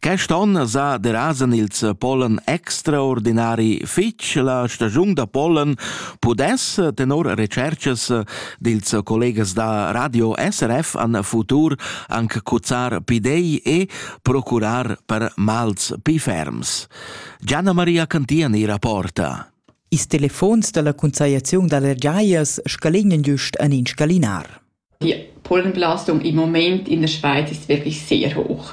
Quest onn sa derasan ils Pollen extraordinari fitg. La stagiun da pollen pudess tenor recerchas dils collegas da Radio SRF an futur anche cuzzar pidei e procurar per mals pi ferms. Gianna Maria Cantian ira porta. Is telefons dalla Consagliazione dalle Giaias scalignan giust an in scalinar. Die Pollenbelastung im Moment in der Schweiz ist wirklich sehr hoch.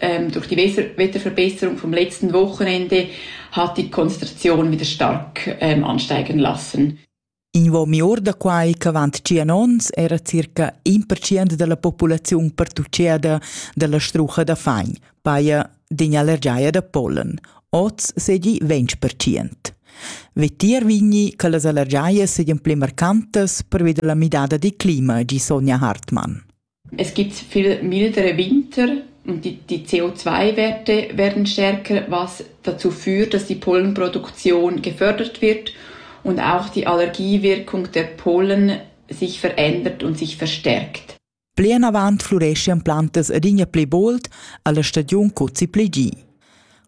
ähm, durch die Wetterverbesserung vom letzten Wochenende hat die Konzentration wieder stark ähm, ansteigen lassen. In uomi or da quai ch'avant tschien onns era circa in percent della populaziun pertucceda della strucha da fain, paia din allergiaia da pollen. Oz segi 20%. Vetier vigni che las allergiaie seien pli marcantas pervi della midada di clima, di Sonja Hartmann. Es gibt viel milderer Winter und die die CO2-Werte werden stärker, was dazu führt, dass die Pollenproduktion gefördert wird und auch die Allergiewirkung der Pollen sich verändert und sich verstärkt. Plinavant flurescian plantas adina pli bold alla stagiun cuzzi pli gi.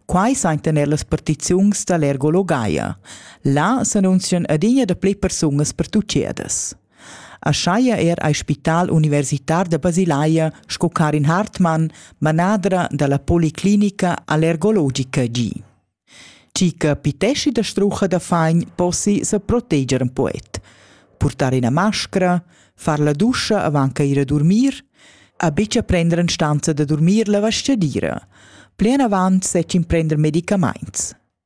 Quai saintan er las partiziuns da l'ergologaia. Là s'annunzian adina da pli persungas pertuchedas. Aschia era ei spital universitar da Basilaia sco Karin Hartmann, manadra dalla policlinica allergologica gi. Chi che piteschi da strucha da fagn possi se proteger in poet, purtar ina mascra, far la duscha avant che ir a dormir, a bicia prender in stanza da dormir la vastgadira. Plien avant sech imprender medicamaints.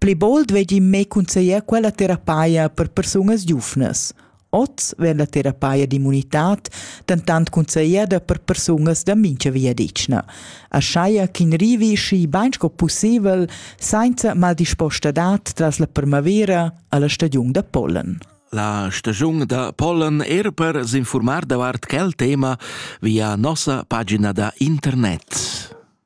Pli bold vegli mei cunzeglier quella terapeia per persunas giuvnas. Oz vegn la terapeia d'immunitad dentant cunzegliada per persunas da mincha viadetgna, aschaia ch'in rivi schi bain sco pussibel sainza maldispostadat tras la primavera alla stagiun da pollen. La stagiun da pollen er per s'informar davart quel tema via nossa pagina da internet.